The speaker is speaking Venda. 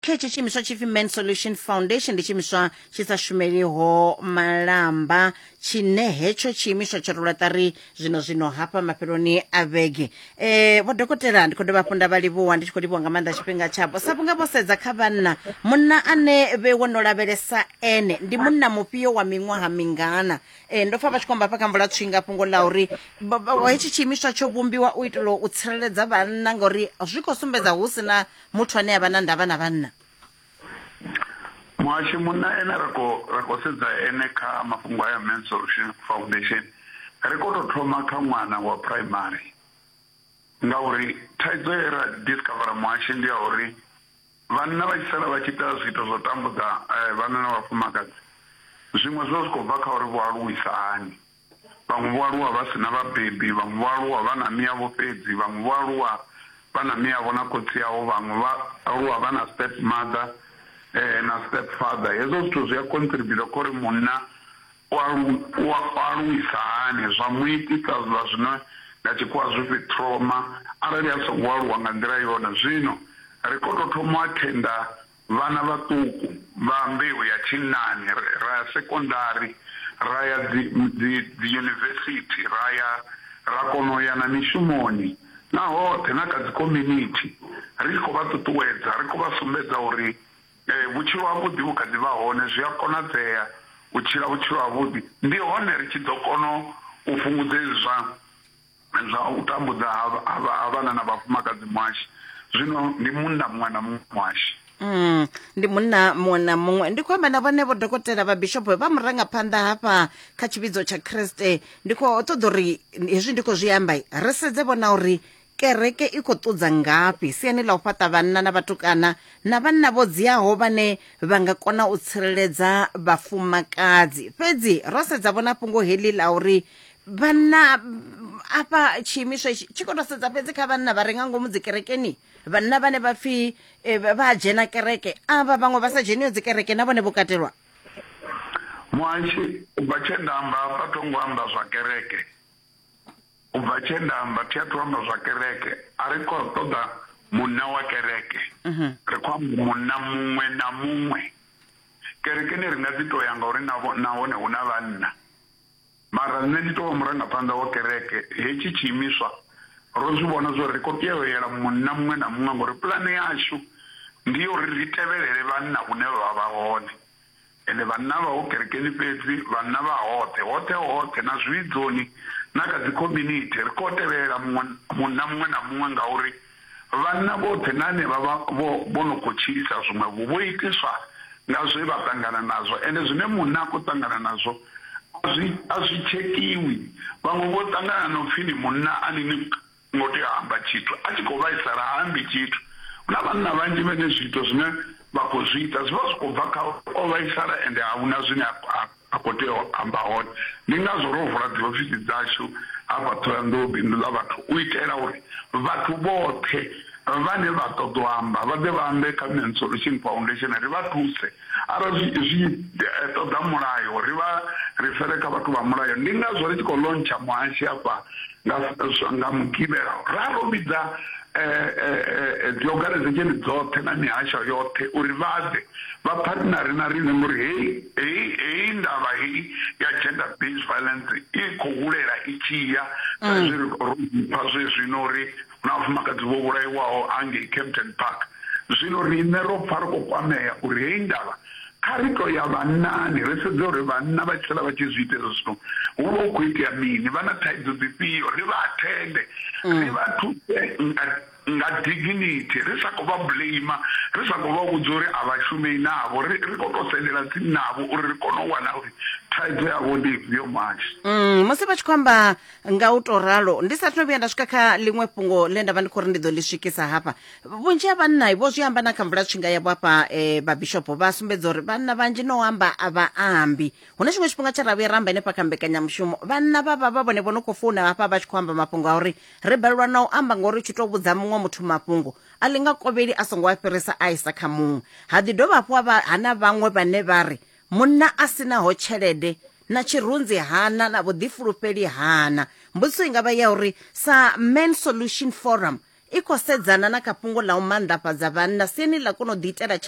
kha hetshi tshiimiswa tshipfi man solution foundation ndi tshiimiswa tshi sa shumeliho malamba tshine hetsho tshiimiswa tsho rula ṱari zwino zwino hafha mafheloni a vhege um vho dokotela ndi khou dovha hafhu nda vha livhuwa ndi tshi khou livhuwa nga maanḓa tshifhinga tshavho sa vhunga vho sedza kha vhanna munna ane vhe wo no lavhelesa ene ndi munna mufhio wa miṅwaha mingana um ndo pfa vha tshi khou amba hafha kha mvula tswinga fhungo ḽa uri ba- ba- hetshi tshiimiswa tsho vhumbiwa u itela u tsireledza vhanna ngauri zwi khou sumbedza hu si na muthu ane a vha na ndavha na vhanna muhashi munna ene ra khou sedza ene kha mafhungo aya man solution foundation ri khou tou thoma kha ṅwana wa primary ngauri thaidzo ye ra discovera muhashi ndi ya uri vhanna vha tshi sala vha tshi ita zwiito zwo tambudza eh, vhanna na vhafumakadzi zwiṅwe zwo zwi khou bva kha uri vho aluwisa hani Vhaṅwe vho aluwa vha si na vhabebi, vhaṅwe vho aluwa vha na miavho fhedzi, vhaṅwe vho aluwa vha na miavho na khotsi avho, vhaṅwe vha aluwa vha na step mother na step father. Hezwo zwithu zwi a contributor kha uri munna u alu u aluwisa hani zwa mu itisa zwa zwino nga tshikhuwa zwipfi trauma arali a songo aluwa nga nḓila yone. Zwino ri kho to thoma u athenda Vhana vhaṱuku vha mbeu ya tshinnani ra ya sekondari, ra ya dzi, dzi, dzi yunivesithi, ra ya, ra kona u ya na mishumoni, na hoṱhe, na kha dzikhominithi, ri tshi khou vha ṱuṱuwedza, ri khou vha sumbedza uri e, vhutshilo havhuḓi vhu kha ḓi vha hone, zwi a konadzea u tshila vhutshilo havhuḓi. Ndi hone ri tshi ḓo kona u fhungudza hezwi zwa. Zwa u tambudza ha, ha, vha, ha vhana na vhafumakadzi muhashi. Zwino ndi munna muṅwe na muṅwe muhashi. Mm, ndi munna muṅwe na muṅwe ndi khou amba na vhone vho dokotela vha bishopo vha murangaphanḓa hafha kha tshivhidzo tsha kriste ndi khou ṱoḓa uri hezwi ndi khou zwi amba ri sedze vhona uri kereke i khou ṱudza ngafhi siani ḽa u fhaṱa vhanna na vhatukana na vhanna vho dziaho vhane vha nga kona u tsireledza vhafumakadzi fhedzi ro sedza vhona fhungo heḽi ḽa uri vhanna mm, afha tshiimiswa itshi tshi khou tou sedza fhedzi kha vhanna vha re nga ngomu dzikerekeni vhanna vhane vha pfhi eh, vha vha dzhena kereke avha vhaṅwe vha sa dzheniho dzikereke na vhone vho katelwa muhashi u bva tshe nda amba hafha tho ngo amba zwa kereke u bva tshe nda amba thi athu amba zwa kereke a ri khou ṱoḓa munna wa kereke ri khou amba munna muṅwe na muṅwe kerekeni ri nga dzi to ya ngauri navho- nahone hu na vhanna Mara nṋe ndi tou vha murangaphanḓa wa kereke, hetshi tshiimiswa ro zwi vhona zwa uri ri khou tea u yela munna muṅwe na muṅwe ngauri pulane yashu ndi ya uri ri tevhelele vhanna hune vha vha vha hone. Ende vhanna a vha ho kerekeni fhedzi, vhanna vha hoṱhe, hoṱhe hoṱhe na zwivhidzoni na kha dzi community. Ri khou tevhelela muṅwe, munna muṅwe na muṅwe ngauri. Vhanna vhoṱhe na henevha vha vho vho no khou tshilisa zwiṅwevho vho itiswa nga zwe vha ṱangana nazwo, ende zwine munna a khou ṱangana nazwo a zwi a zwi tshekhiwi. Vhaṅwe vho ṱangana na u pfi ni munna a ni ni ngo tea u amba tshithu, a tshi khou vhaisala ha ambi tshithu. Hu na vhanna vhanzhi vhane zwiito zwine vha khou zwi ita zwi vha zwi khou bva kha uri o vhaisala ende a hu na zwine a khou amba. A khou tea u amba hone. Ndi ngazwo ro vula dziofisi dzashu hafha Thohoyandou Bindu ḽa Vhathu u itela uri vhathu vhoṱhe vhane vha ṱoḓa u amba vha ḓe vha ambe kha Men's Solution Foundation ri vha thuse. Arali zwi tshi ṱoḓa mulayo ri vha rifere kha vhathu vha mulayo. Ndi ngazwo ri tshi khou lontsha muhashi hafha Nga, nga Mugivhela ra ro vhidza dziorganizesheni dzoṱhe na mihasho yoṱhe uri vha ḓe vha phathinare na riṋe ngori heyi heyi heyi ndavha heyi ya gender based violence i khou hulela i tshi ya saizwi ro pfa zwezwino uri na vhafumakadzi vho vhulaiwaho ha ngei Kempton Park. Zwino riṋe ro pfa ri khou kwamea uri heyi ndavha kha ri tou ya vhannani ri sedze uri vhanna vha tshi sala vha tshi zwi ita hezwo zwithu hu vha hu khou itea mini, vha na thaidzo dzifhio, ri vha athende, mm. ri vha thuse nga nga dignity ri sa khou vha blame ri sa khou vha vhudza uri a vha shumei navho ri khou tou sendela tsini navho uri ri kone u wana uri thaidzo yavho ndi ifhio manzhi mm, musi vha tshi khou amba nga u to ralo ndi sa thome vhuya nda swika kha ḽiṅwe fhungo ḽe nda vha ndi khou ri ndi ḓo ḽi swikisa hafha vhunzhi ha vhanna vho zwi amba na kha mvula tshinga yavho hafha um vhabishopo vha sumbedza uri vhanna vhanzhi no amba a vha ambi hune tshiṅwe tshifhinga tsha ravhuya ra amba henefha kha mbekanyamushumo vhanna vha vha vha vhone vho no khou founa hafha vha tshi khou amba mafhungo a uri ri balelwa na u amba ngauri tshi tou vhudza muṅwe muthu mafhungo a ḽi nga kovheli a songo a fhirisa a isa kha muṅwe ha ḓi dovha hafhu ha na vhaṅwe vhane vha ri munna a sinaho tshelede na tshirunzi hana na vhuḓifulufheli hana. Mbudziso i nga vha ya uri sa Men Solution Forum i khou sedzana na kha fhungo ḽa u manḓafhadza vhanna siani ḽa kona u ḓiitela tshelede.